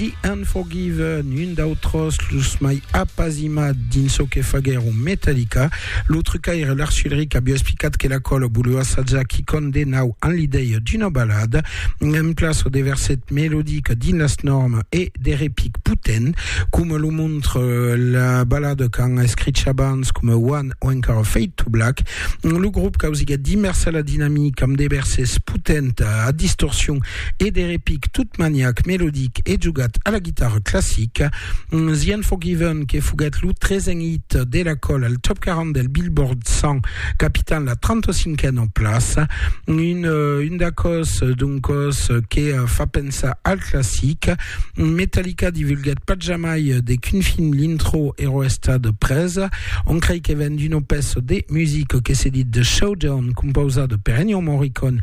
The Unforgiven, un d'autres los mai apasimat dins çò que faguèron Metallica. Lo trucaire Lars Ulrich aviá explicat que la cola voliá assajar quicòm de nau en l'idèia d'una balada, en plaça de verset melodic dins las normas e de repic potent, coma lo montre la balada qu'an escrich abans coma One o encara Fade to Black. Lo grop causiguèt d'immersa la dinamica amb de versets potents a distorsion e de repic tot maniac, melodic e jogat a la guitarra classica, The Unforgiven que foguèt lo tresen hit de la còla al Top 40 del Billboard 100 capitant la 35a plaça, un, un d'acòs d'un còs que fa pensar al classic. Metallica divulguèt pas jamai de quin film l'intro èra estat presa, on crei que ven d'una pèça de musica que se dit The Showdown, compausada per Ennio Morricone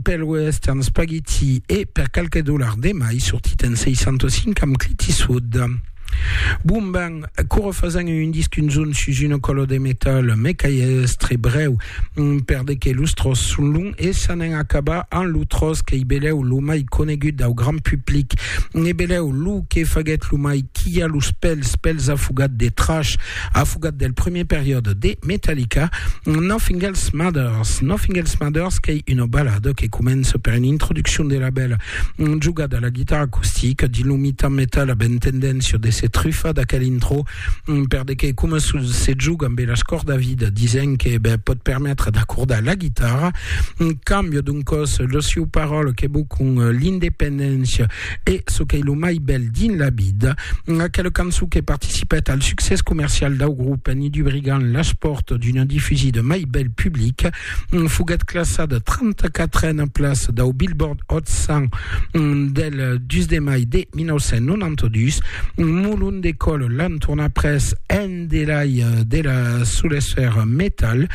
Pel West and Spaghetti e per qualque dollar de mai sortit en 65 amb Clint Eastwood. Bon ben, coro fasen un disc un zon sus una colo de metal, me qu'ai estre breu, per de que los tros son long e s'anen acabar an lo tros qu'ei beleu lo mai conegut dau grand public, ne beleu lo que faguet lo mai quia los pels pels afogat de trash, Afugat del premier periòde de Metallica, Nothing Else Matters. Nothing Else Matters qu'ei una balada que comença per una introduccion de la bèla jogada a la guitarra acustica dins lo mitan metal a ben tendéncia de se trufar d'aquel intro per de que coma se joga amb las còrdas vida disent que ben, pòt permetre d'acordar la guitarra cambia d'un còs lo siu paròla que bocon l'independéncia E çò qu'ei lo mai bèl dins la vida, aquela cançon que participèt al succès comercial dau grop en i dubrigant las pòrtas d'una difusida mai bèl public, foguèt classada 34a plaça dau Billboard Hot 100 del 2 de mai de 1992. Molon de còl l'entorn après un delai de la solesser metal.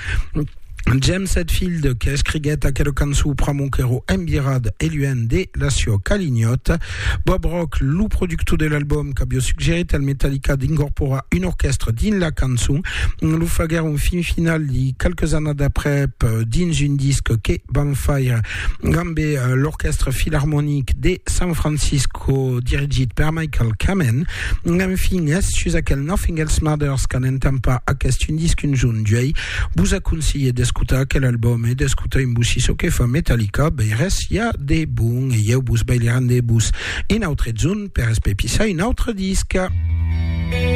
James Hetfield que escriguèt aquela cançó pr'amor qu'èro embirat e luènh de la sua calignòta. Bob Rock, lo productor de l'album, qu'avió suggerit al Metallica d'incorporar un orquèstre dins la cançon, lo faguèron fin final li qualques annadas aprèp dins un disc que van faire amb l'Orquèstre Filarmonic de San Francisco dirigit per Michael Kamen. Enfin, es sus aquel Nothing Else Matters qu'an entampar aquest un disc un jorn d'uèi. Vos aconselhe d'escotar aquel album e d'escotar en vos si çò que fa Metallica bèi res i a de bon e ieu vos bèi li rendebos un autre zon per espepissar un autre disc.